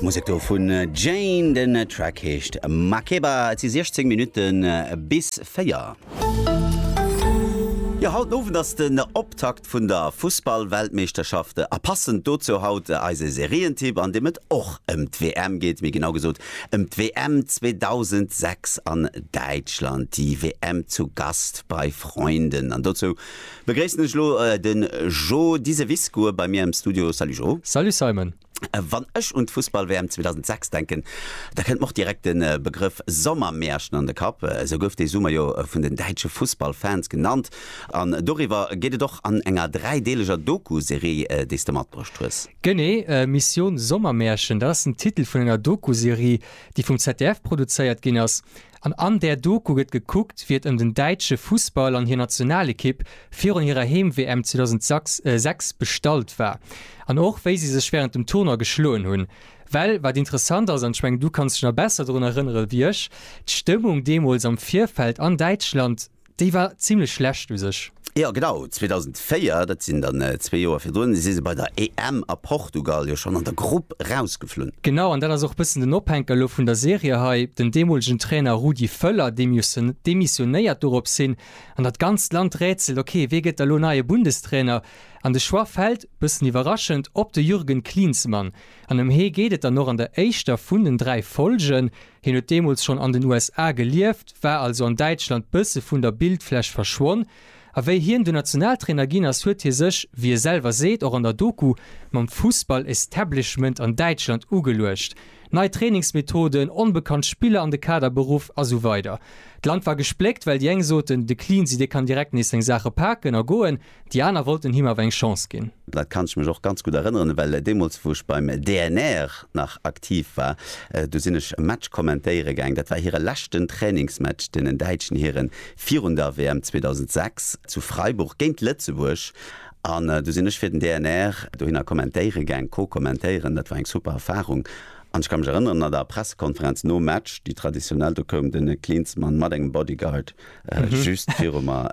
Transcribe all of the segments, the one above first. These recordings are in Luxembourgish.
D'Musek do vun Jane, den Track heescht Makeba. Et si 16 Minutten bis 4. Jo, haut Owend ass den Optakt. vun der Fussballweltmeeschterschafte a passend dozou haut eise Serientipp, an deem et och ëm d'WM geet, méi genau gesot ëm d'WM 2006 an Däitschland, die WM zu Gast bei Freunden. An dozou begréissen ech elo de Jo Diseviscourt bei mir am Studio. Salut Jo! Salut Simon! Wann ech un d'Fussball-WM 2006 denken, da kënnt mer och direkt de Begrëff Sommermärchen an de Kapp. Esou gouf dee Summer jo vun den däitsche Fussball-Fans genannt. An doriwwer geet et och an enger dräideeleger Doku-Serie, déi s de matbruecht hues. Genee, Mission Sommermärchen, dat ass den Titel vun enger Doku-Serie, déi vum ZDF produzéiert ginn ass. An an där Doku gëtt gekuckt, wéi et ëm den däitsche Fussball an hir Nationalekipp virun hirer Heem-WM 2006 bestallt war. An och, wéi si sech wärend dem Tournoi geschloen hunn. Well, wat interessant ass, an ech mengen, du kanns dech nach besser drun erënnere wéi ech, d'Stëmmung deemools am Virfeld an Däitschland, Déi war zimlech schlecht u sech. Jo genau, 2004, dat sinn dann zwee Joer virdrun, si se bei der EM a Portugal jo schonn an der Grupp rausgeflunn. Genau, an dat ass och e bëssen den Ophänker elo vun der Serie hei, den deemolegen Trainer Rudi Völler, dee demissionéiert dorops hin, an dat ganzt Land rätselt, ok, wee gëtt da lo neie Bundestrainer? An de Choix fält, bëssen iwwerraschend, op de Jürgen Klinsmann. An ëm hee geet et dann och an der éischter vun den dräi Folgen. Hien huet deemools schonn an den USA gelieft, war also an Däitschland bësse vun der Bildfläch verschwonn. A wéi hien dunn Nationaltrainer ginn ass, huet hie sech, wéi e selwer seet, och an der Doku, mam Fussball-Establishment an Däitschland ugeluecht. Nei Trainingsmethoden, onbekannt Spiller an de Kader beruff a sou weider. D'Land war gespléckt, well déi eng soten, de Cleansy dee kann direkt nees seng Saache paken a goen. Déi aner wollten him awer eng Chance ginn. Dat kann ech mech och ganz gutt erënneren, well deemools wou ech beim DNR nach aktiv war, do sinn ech e Match kommentéiere gaang. Dat war hire leschten Trainingsmatch, deenen däitschen Hiren, virun der WM 2006 zu Freiburg géint Lëtzebuerg. An du sinn ech fir den DNR dohinner kommentéiere gaang, co-kommentéieren. Dat war eng super Erfarung. An ech ka mech erënneren, an der Pressekonferenz nom Match, déi traditionell, do koum de Klinsmann mat engem Bodyguard, Just viru mer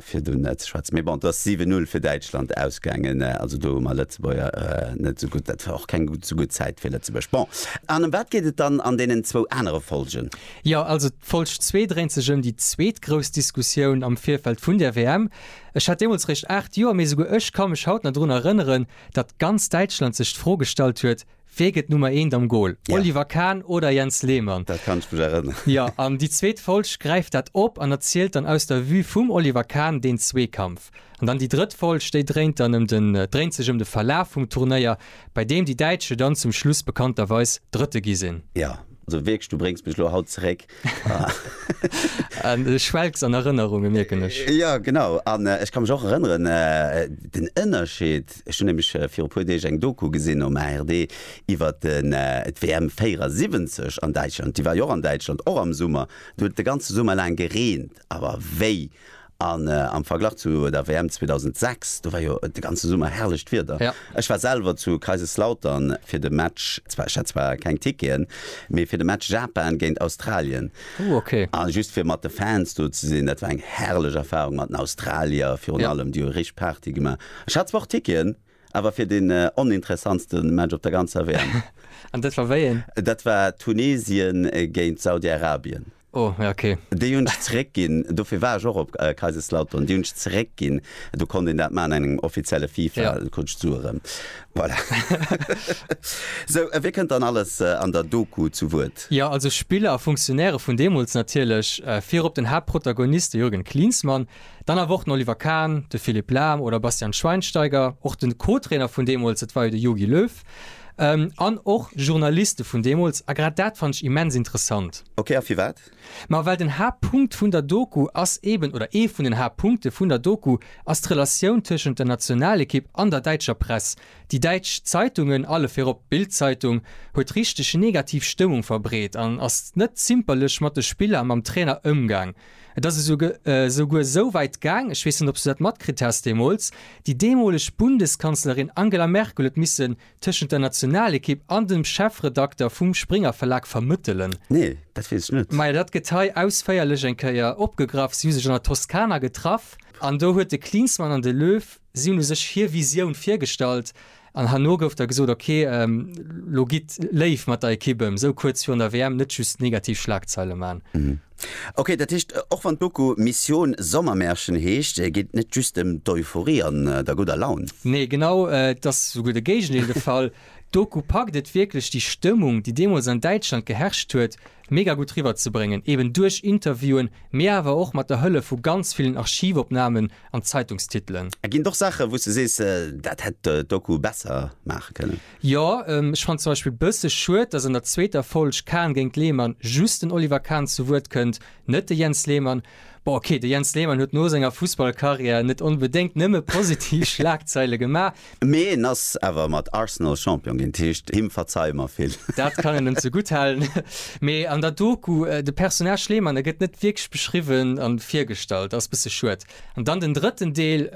fir do net ze schwätzen. Mee bon, et ass 7-0 fir Däitschland ausgaangen. Also do hu mer Lëtzebuerger net esou gutt, dat war och keng esou gutt Zäit fir Lëtzebuerg. Bon, an ëm wat geet et dann an deenen zwou anere Folgen? Jo, also d'Folg zwee dréint sech ëm déi zweet grouss Diskussioun am Virfeld vun der WM. Ech hat deemools réischt 8 Joer, mee esouguer ech ka mech haut nach drun erënneren, datt ganz Däitschland sech d'Fro gestallt huet, Wee gëtt Nummer eent am Gol? Ja. Oliver Kahn oder Jens Lehmann? Dat kann ech mech erënneren. Jo, an déi zweet Folg gräift dat op an erzielt dann aus der Vue vum Oliver Kahn deen Zweekampf. An dann déi drëtt Folg, déi dréint dann ëm den, dréint sech ëm de Verlaf vum Turnéier, bei deem déi Däitsche dann zum Schluss bekannterweis Drëtte gi sinn. Jo, also wierklech, du bréngs mech elo haut zeréck Du schwelgs an Erënnerungen, mierken ech. Jo, genau. An ech ka mech och erënneren, den Ënnerscheed, ech hunn nämlech viru e puer Deeg eng Doku gesinn um ARD iwwer d'WM 74 an Däitschland, déi war jo och an Däitschland, och am Summer. Do huet et de ganze Summer laang gereent, awer wéi! An am Verglach zu der WM 2006, do war jo de ganze Summer herrlecht Wieder. Ech war selwer zu Kaiserslautern fir de Match, zwar ech hat zwar keng Ticketen, mee fir de Match Japan géint Australien. Ooh ok. A just fir mat de Fans do ze sinn, dat war eng herrlech Erfahrung mat den Australier virun allem, déi hu richteg Party gemaach. Ech hat zwar och Ticketen, Awer fir den oninteressantste Match op der ganzer WM. An dat war wéi een? Dat war Tunesien géint Saudi-Arabien. Oh, ja ok. Déi hunn ech zeréckginn, dofir war ech och op Kaiserslautern. Déi hunn ech zeréckginn, do konnt een dat maachen an engem offizielle FIFA, Ja. do krut ech d'Sue erëm. Voilà. Sou, wie kënnt dann alles an der Doku zu Wuert? Jo, also Spiller a Funktionäre vun deemools natierlech. Virop den Haaptprotagonist, de Jürgen Klinsmann. Dann awer och den Oliver Kahn, de Philipp Lahm oder Bastian Schweinsteiger, och de Co-Trainer vun deemools, dat war jo de Jogi Löw, an och Journaliste vun deemools. A grad dat fannt ech immens interessant. Ok, a firwat? Ma well den Haaptpunkt vun der Doku ass eeben, oder ee vun den Haaptpunkte vun der Doku ass d'Relatioun tëschent der Nationalekipp an der däitscher Press. Déi däitsch Zeitungen, alle virop d'Bild-Zeitung, huet richteg negativ Stëmmung verbreet an ass net zimperlech mat de Spiller a mam Trainer ëmgaang. Et ass esouguer esou wäit gaang, ech weess net, ob s du dat matkritt has deemools, déi deemoleg Bundeskanzlerin Angela Merkel huet missen tëschent der Nationalekipp an dem Chefredakter vum Springer-Verlag vermëttelen. Nee, dat weess ech net. Maja, dat gëtt hei ausféierlech eng Kéier opgegraff. Si hu sech an der Toskana getraff an do huet de Klinsmann an de Löw Si hunn u sech hir Visioun virgestallt an herno gouf da gesot, ok, lo gitt léif mat der Ekipp ëm, esou kuerz virun der WM net just negativ Schlagzeile man. Ok, dat heescht, och wann d'Doku Mission Sommermärchen heescht, geet et net just ëm d'Euphorie an der gudder Laun. Nee, genau, et ass esouguer de Géigendeel de Fall. D'Doku packt et wierklech, déi Stëmmung, déi deemools an Däitschland geherrscht huet, mega gutt riwwer ze bréngen, eben duerch Interviewen, mee awer och mat der Hëllef vu ganz villen Archivopnamen an Zeitungstitelen. A ginn et och Saachen, wou s de sees, dat hätt d'Doku besser maache kënnen? Jo, ech fannen zum Beispill bësse schued, dass an der zweeter Folg Kahn géint Lehmann just den Oliver Kahn zu Wuert kënnt, net de Jens Lehmann. Bon ok, de Jens Lehmann huet no senger Fussballcarrière net onbedéngt nëmme positiv Schlagzeile gemaach. Mee en ass awer mat Arsenal Champion ginn, d'heescht him verzeie mer vill. Dat kann en em zegutt halen. Mee an der Doku, de Personnage Lehmann, e gëtt net wierklech beschriwwen a virgestallt, ass bësse schued. An dann den drëtten Deel,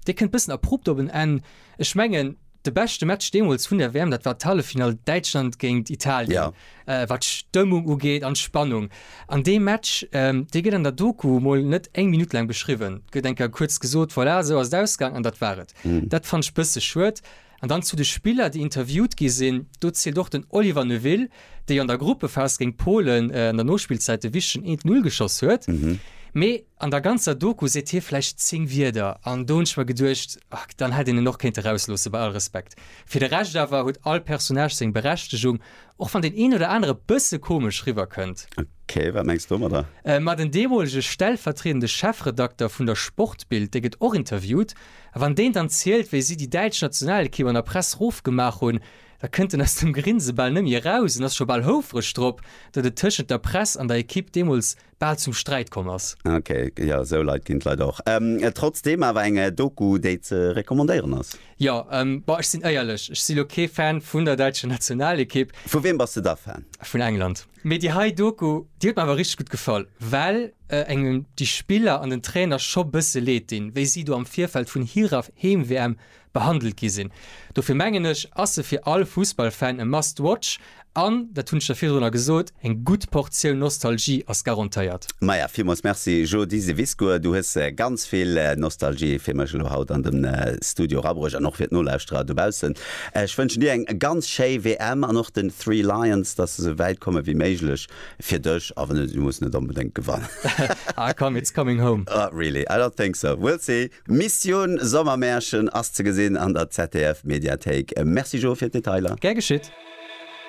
dee kënnt bëssen abrupt op en Enn, Ech mengen, de beschte Match deemools vun der WM, dat war d'Halleffinall Däitschland géint Italien, wat d'Stëmmung ugeet an d'Spannung. An dee Match, dee gëtt an der Doku mol net eng Minutt laang beschriwwen, et gëtt eng Kéier kuerz gesot, voilà, esou ass et ausgaang an dat war et. Dat fannt ech bësse schued. An dann zu de Spiller, déi interviewt gi sinn, do zielt och den Oliver Neuville, dee jo an der Gruppephas géint Polen an der Nospillzäit de wichtegen 1-Null geschoss huet. Mee. An der ganzer Doku seet hie vläicht 10 Wierder, an do hunn ech mer geduecht, ahk, dann hätt een en och kéinte rausloossen, bei all Respekt. Fir de Rescht awer huet all Personnage seng Berechtegung, och wann deen een oder anere e bësse komesch riwwer kënnt. Ok, wat mengs de domadder? Ma den deemolege stellvertriedende Chefredakter vun der Sportbild, dee gëtt och interviewt, a wann deen dann zielt, wéi si déi däitsch Nationalekipp an der Press rof gemaach hunn, da kënnt en aus dem Grinse bal net méi eraus an ass scho bal houfreg drop, datt et tëschent der Press an der Ekipp deemools bal zum Sträit komm ass. Ok, jo sou Leit ginn et leider och. Trotzdem awer eng Doku déi ze recommandéieren ass. Jo, bon ech sinn éierlech, ech si lo kee Fan vun der däitscher Nationalekipp. Vu wiem bass de da Fan? Vun England. Mee déi hei Doku, déi huet mer awer richteg gutt gefall, well engem déi Spiller an den Trainer scho bësse Leed dinn, wéi si do am Virfeld vun hirer Heem-WM behandelt gi sinn. Dofir mengen ech, ass se fir all Fussballfan e must watch an, dat hunn ech der virdrunner gesot, eng gutt Portioun Nostalgie ass garantéiert. Maja, villmools Merci Jodi Seviscourt, du hues ganz vill Nostalgie fir mech elo haut an de Studio erabruecht an och fir d'Nolauschterer dobaussen. Ech wënschen dir eng ganz schéi WM an och den Three Lions, dass se sou wäit komme wéi méiglech fir dech, a wann net, si mussen net onbedéngt gewannen. Ah komm, it's coming home. Really, I don't think so, we'll see. D'Missioun Sommermärchen ass ze gesinn an der ZDF-Mediathéik. Merci Jo fir d'Detailer. Gär geschitt.